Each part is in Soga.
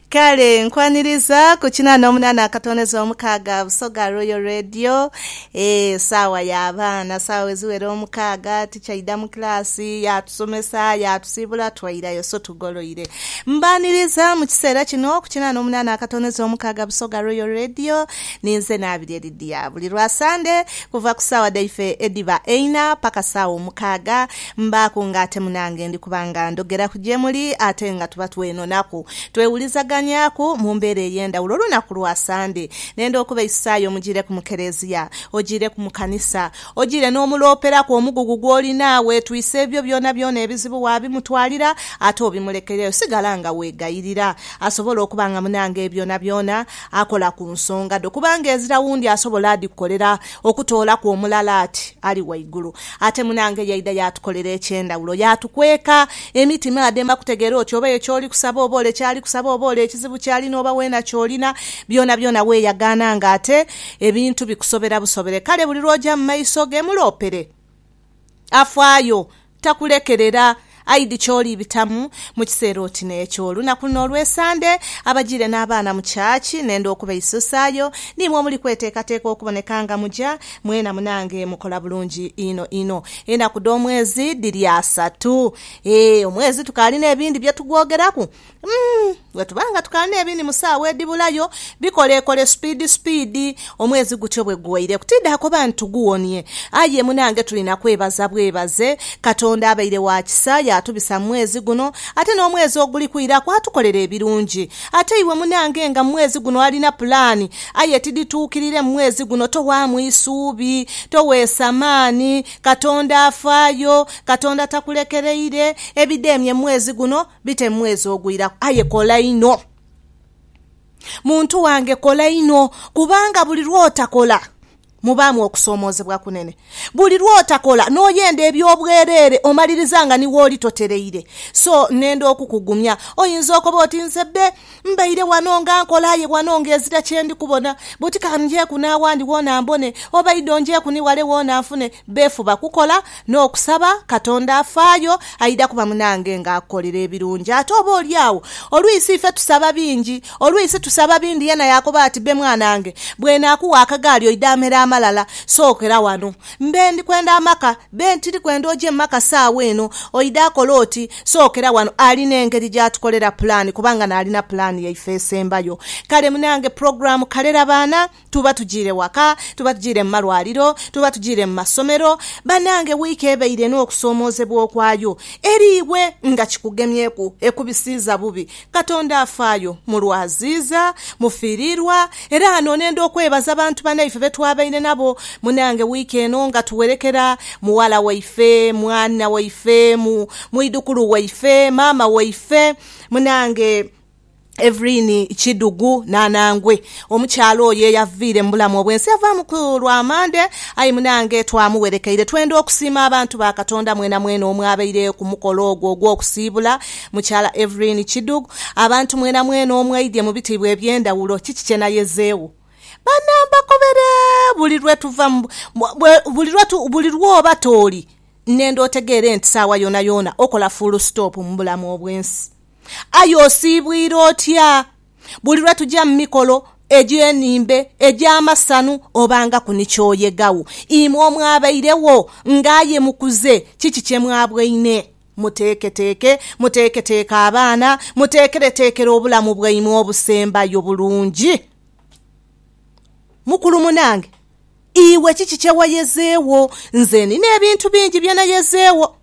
Kale nkwaniriza ku kinana omunana akatondeza omukaaga Busoga Royal Radio. Eh, saawa ya baana, saawa eziwera omukaaga tikyaida mu kilaasi, yaatusomesa, yaatusiibula twairayo. So tugoloire. Mbaaniriza mu kiseera kino ku kinana omunana akatondeza omukaaga Busoga Royal Radio. Ninze Naabirye Lydia. Buli lwa Sande kuva ku saawa dhaife edhiba eina paka saawa omukaaga, Mbaaku nga ate munange ndi kuba nga ndhogeraku gye muli ate nga tuba twenonaku. Twewulizaganyaaku mu mbeera ey'endhawulo olunaku lwa Sande. Nenda okubaisaayo mujiireku mu Kelezia, ojiireku mu kanisa, ojiire n'omulooperaku omugugu gw'olina, weetwise ebyo byonabyona ebizibu waabimutwalira ate obimulekereyo. Sigala nga weegayirira asobole okuba nga munange byonabyona akola ku nsonga dho kubanga ezira wundi asobola adhikukolera okutoolaku omulala ati ali waigulu. Ate munaange yaidha yaatukolera eky'endhawulo. Yaatukweka emiti maadhema kutegeera oti oba eyo ky'oli kusaba oba ole ky'ali kusaba oba ole ekizibu ky'alina oba weena ky'olina. Byonabyona weeyagaana ng'ate ebintu bikusobera busobere. Kale buli lw'oja mu maiso ge muloopere. Afaayo. Takulekerera. Aidhi ky'olibitamu mu kiseera oti n'ekyo. Olunaku luno olw'Esande, abajiire n'abaana mu church, nenda okubaisuusaayo, niimwe omuli kweteekateeka okuboneka nga muja, mwena munange mukola bulungi inho inho. Enaku dh'omwezi dhiri asatu. Eeh, omwezi tukaali n'ebindi bye tugwogeraku, Umm bwe tuba nga tukala n'ebiini mu saawa edhibulayo, bikoleekole supiidi supiidi. Omwezi gutyo bwe guweireku, tiidaakoba nti tuguwonie. Aye munange tuli na kwebaza bwebaze. Katonda abaire wa kisa yaatubisa mu mwezi guno, ate n'omwezi oguli kwiraku atukolera ebirungi. Ate iwe munange nga mu mwezi guno olina pulaani aye tidhituukirire mu mwezi guno, towaamu isuubi, toweesa maani. Katonda afaayo. Katonda takulekereire. Ebidheemye mu mwezi guno Bite mu mwezi ogwiraku aye kola inho muntu wange kola inho kubanga buli lwotakola mubaamu okusoomoozebwa kunene. Buli lwotakola n'oyenda eby'obwereere omaliriza nga ni wooli totereire. So, nnenda okukugumya. Oyinza okoba oti, Nze bbe, Mbaire wano nga nkola aye wano ng'ezira kye ndi kubona. Buti ka njeeku n'awandi wona mbone, oba idho njeeku ni wale wona nfune. Beefuba kukola n'okusaba Katonda afaayo, aidha kuba munange ng'akolera ebirungi. Ate oba oli agho, olwisi ife tusaba bingi. Olwisi tusaba bindi. Yena yaakoba ati, Bbe mwanange, bw'enaakugha akagaali oidha amere amalala, sookera wano. Mbe ndi kwenda amaka. Ben, Tiri kwenda oje mu maka saawa eno. Oidha akola oti, sookera wano. Alina engeri gy'atukolera pulaani kubanga n'alina pulaani yaife esembayo. Kale munange pulogulaamu kalera baana, tuba tujiire waka, tuba tujiire mu malwaliro, tuba tujiire mu masomero. Banange wiiki ebaire n'okusoomoozebwa okwayo eri iwe nga kikugemyeku, ekubisiiza bubi. Katonda afaayo mu lwaziiza, mu fiiriirwa, era ghano nenda okwebaza bantu banaife be twabaire nabo munange wiiki eno nga tuwerekera mughala waife, mwana waife, mu, mwidhukulu waife, maama waife, munange Evelyn Kidhugu n'anangwe. Omukyala oyo eyaviire mu bulamu obw'ensi yavaamu ku lwa Mande, aye munange twamuwerekeire. Twenda okusiima abantu ba Katonda mwenamwena omwabaire ku mukolo ogwo ogw'okusiibula. Mukyala Evelyn Kidug, Abantu mwenamwena omwaidye mu bitiibwa eby'endhawulo, kiki kye nayezeegho? Bana mbakobere buli lwe tuva mu, buli lwe tu, buli lw'oba tooli nnenda otegeere nti saawa yoonayoona okola fuulu sitoopu mu bulamu obw'ensi. Aye osiibwire otya? Buli lwe tuja mu mikolo egy'enhimbe, egy'amasanhu, obangaku ni ky'oyegagho. Imwe omwabairegho nga aye mukuze, kiki kye mwabwaine? Muteeketeeke, muteeketeeke abaana, muteekereteekere obulamu bwaimwe obusembayo bulungi. Mukulu munange, iwe kiki kye wayezeewo? Nze nina ebintu bingi bye nayezeewo.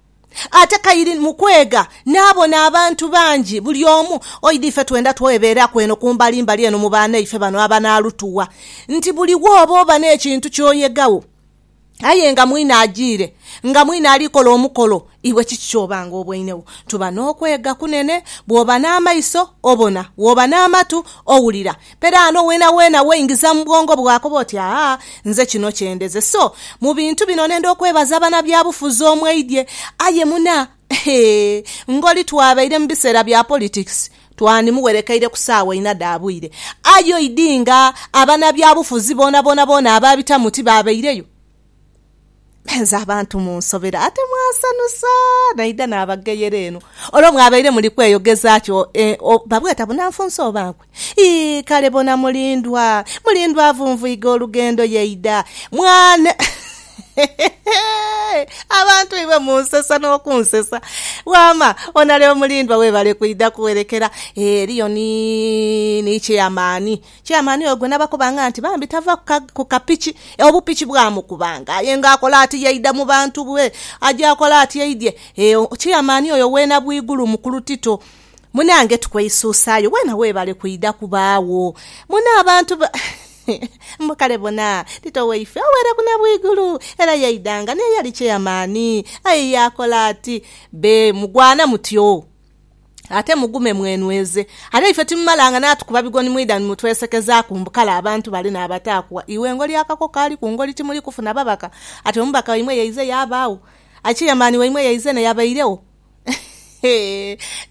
Ate kaire mu kwega naabona abantu bangi, buli omu. Oidha ife twenda twebeeraku eno ku mbalimbali eno mu baanaife bano abanaalutuwa nti buli wooba oba n'ekintu ky'oyegagho. Aye nga mwine ajiire, nga mwine ali kola omukolo, iwe kiki ky'oba nga oboinegho? Tuba n'okwega kunene. Bw'oba n'amaiso, obona. Bw'oba n'amatu, owulira. Peraano weenaweena weingiza mu bwongo bwo akoba oti, Aa, nze kino kye ndeze. So, mu bintu bino nenda okwebaza banabyabufuzi omweidhye. Aye muna, hee, ngoli twabaire mu biseera bya politikisi. Twandimuwerekeire ku saawa inha dha bwire, aye oidhi nga abanabyabufuzi boonaboona boona abaabitamu tibaabaireyo. Mwenze abantu munsobera, ate mwasanusa! Naidha naabagheyera eno, olwo mwabaire muli kweyogeza ki? O, babweta bunanfunsi oba nkwe? Ii, kale bona mulindwa, mulindwa avunvuiga olugendo yaidha. Mwana. Abantu iwe munsesa nokunsesa wama onale omulindwa webale kwidha kuwerekera eriyo ni ni chairman chairman ogwo nabakubanga nti bambi tava kukapiki obupiki bwamukubanga aye nga akola ati yaidha mubantu bwe aja akola ati aidhye chairman oyo wena bwigulu mukulu tito munange tukweisusayo wena webale kwidha kubagho mune abantu Mbu kale bona, Tito waife oweere ku na bwigulu, era yaidanga n'eyali cheyamaani. Aye yaakola ati, Be mugwana mutyo, ate mugume mwenweze. Ate ife timumalanga naatukuba bigoni mwidha ni mutwesekezaaku mbu kale abantu bale n'abataakugha. Iwe ngoli akako kaali ku ngoli timuli kufuna babaka? Ati omubaka waimwe yaize yaabaagho, aye cheyamaani waimwe yaize n'eyabairegho.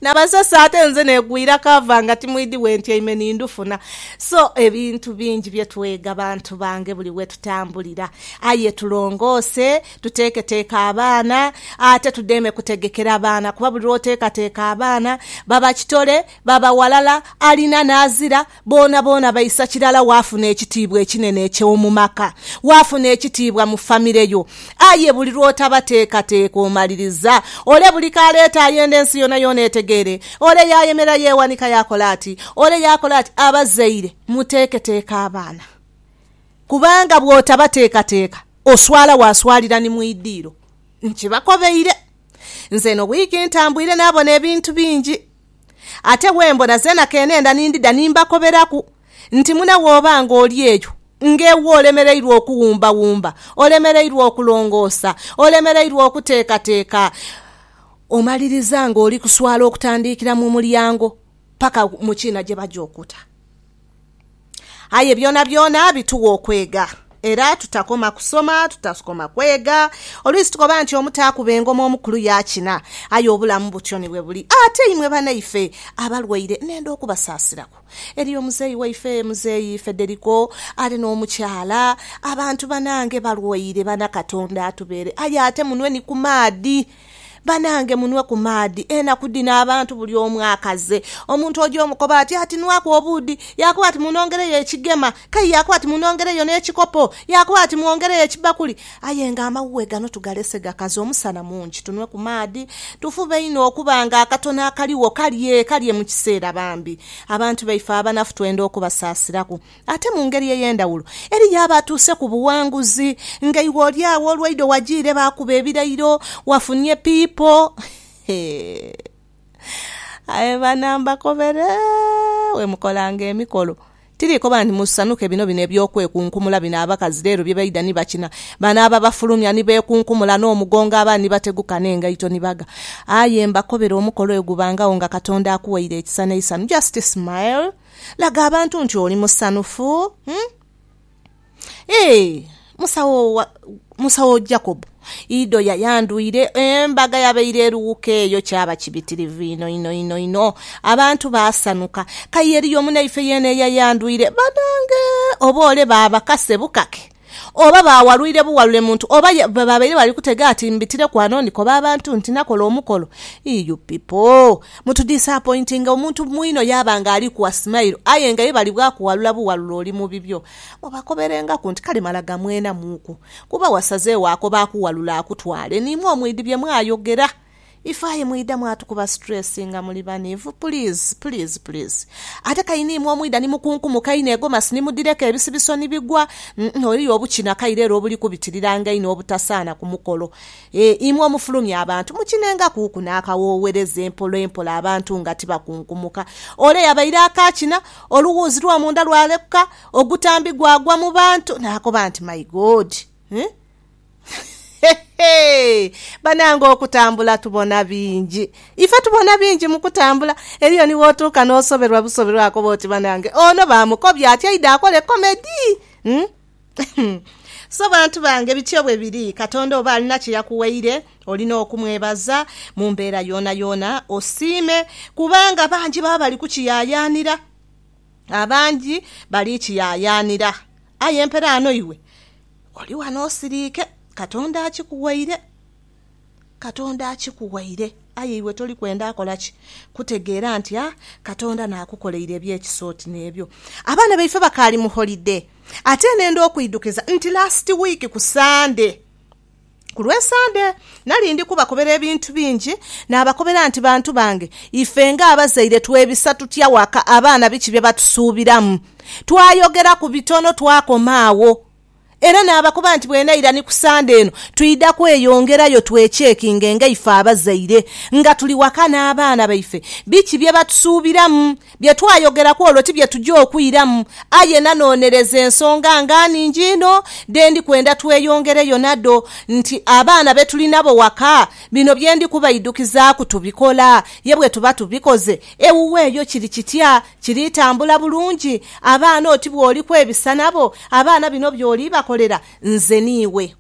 Nabasesa ate nze negwira cover nga timwidi wentyaime ni ndhufuna. So ebintu bingi bye twega bantu bange buli we tutambulira. Aye tulongoose, tuteeketeeke abaana ate tudheeme kutegekera baana kuba buli lwoteekateeka abaana baba kitole, baba walala, alina n'azira. Boonaboona baisa kirala waafuna ekitiibwa ekinene eky'omu maka, waafuna ekitiibwa mu famire yo. Aye buli lw'otabateekateeka omaliriza. Ole buli k'aleeta ayenda ensi yoonayoona etegeere. Ole yaayemerera yeewanika yaakola ati, ole yaakola ati. Abazaire muteeketeeke abaana, kubanga bw'otabateekateeka oswala waaswalira ni mu idiiro. Nkibakobeire. Nze eno wiiki ntambwire naabona ebintu bingi. Ate bwe mbona zeena ke neenda ni ndidha ni mbakoberaku nti mune wooba ng'oli eyo ng'ewa olemereirwe okuwumbawumba, olemereirwe okulongoosa, olemereirwe okuteekateeka, omaliriza ng'oli kuswala okutandiikira mu mulyango paka mu kiina gye baja okuta. Aye byonabyona bituwa okwega. Era tutakoma kusoma, tutakoma kwega. Oluisi tukoba nti omuto akuba engoma omukulu yaakina. Aye obulamu butyo ni bwe buli. Ate imwe banaife abalwaire nenda okubasaasiraku. Eriyo omuzeeyi waife, Muzeeyi Federico, ali n'omukyala. Abantu banange balwaire, baana Katonda atubeere. Aye ate munwe ni ku maadhi. Banange munwe ku maadhi enaku dhino abantu bulyomu akaze. Omuntu oja omukoba ati ati nwaku obuudhi yakoba ati munongereyo ekigema kei yakoba ati munongereyo nekikopo yakoba ati mwongereyo ekibakuli ayenga amawuwe gano tugalese gakaze omusana mungi tunwe ku maadhi tufube inho okuba nga akatono akaligho kalye kalye mukisera bambi abantu baife abanafu twenda okubasasiraku. Ate mu ngeri ey'endhawulo, eriyo abatuuse ku buwanguzi nga iwe oli agho olwaidho wajiire baakuba ebirairo, wafunye piipo. Aye bana mbakobere, bwe mukolanga emikolo, tiri koba nti musanuke bino bino eby'okwekunkumula bino abakazi leero bye baidha ni bakina. Bano ababafulumya ni beekunkumula n'omugongo abandi ni bateguka n'engaito ni bagha. Aye mbakobere omukolo oyo gubangagho nga Katonda akuwaire ekisa n'eisanhu. Just smile. Laga abantu nti oli musanhufu. Ee, Musawo Jacob Ido yayandhwire embaga yabaire erughuka eyo. Kyaba kibitirivu inho inho inho inho. Abantu baasanhuka. Kaye eriyo munaife yeena eyayandhwire? Banange! Oboole baabakase bukake. Oba baawalwire buwalule muntu oba ye bwe babaire bali kutega ati mbitireku ano ndikoba abantu nti nakola omukolo. Ii you pipo mutu disapointinga omuntu mwino yaaba nga alikugha smile aye nga ye bali bwakuwalula buwalule oli mu bibyo. Mubakoberengaku nti kale mala gamwenamuuku kuba wasazeegho ako baakuwalula akutwale niimwe omwidhi bye mwayogera. If aye mwidha mwatukuba stress nga muli banivu please please please ate kaina imwe omwidha ni mukunkumuka einho egomasi ni mudhireka ebisibiso ni bigwa uhmm eriyo obukina kaire era obuli kubitiriranga einho obutasaana ku mukolo eeh imwe omufulumya abantu mukinenga kuuku na kawowereza empola empola abantu nga tibakunkumuka ole yabaire akakina oluwuuzi lwo munda lwalekuka ogutambi gwagwa mu bantu nakoba nti my God eeh. Hehe! Banange okutambula tubona bingi. Ife tubona bingi mu kutambula. Eriyo ni w'otuuka n'osoberwa busoberwa akoba oti banange ono baamukobya ati aidhe akole komedi? Hum? Hum! So bantu bange bityo bwe biri. Katonda oba alina kye yakuwaire olina okumwebaza mu mbeera yoonayoona osiime kubanga bangi baba bali kukiyaayaanira. Abangi bali kiyaayaanira aye mperaano iwe Oli wano osiriike, Katonda akikuwaire. Katonda akikuwaire. Aye iwe toli kwenda kola ki? Kutegeera nti a, Katonda naakukoleire eby'ekisa oti n'ebyo. Abaana baife bakaali mu holide. Ate nenda okwidhukiza nti lasiti wiiki ku Sande. Ku lw'Esande, nali ndi kubakobera ebintu bingi. Naabakobera nti, Bantu bange, ife ng'abazaire twebisa tutya waka abaana biki bye batusuubiramu? Twayogera ku bitono twakoma agho. Era naabakoba nti, Bwenaira ni ku Sande eno, twidha kweyongerayo twechekinge ng'eife abazaire nga tuli waka n'abaana baife biki bye batusuubiramu Bye twayogeraku olwo ti bye tuja okwiramu, aye nanoonereza ensonga nga nhingi inho dhe ndi kwenda tweyongereyo nadho. Nti abaana be tuli nabo waka, bino bye ndi kubaidhukizaaku tubikola. Ye bwe tuba tubikoze, ewuwo eyo kiri kitya? Kiritambula bulungi? Abaana oti bw'oliku ebisa nabo, abaana bino by'olibakolera nze n'iwe?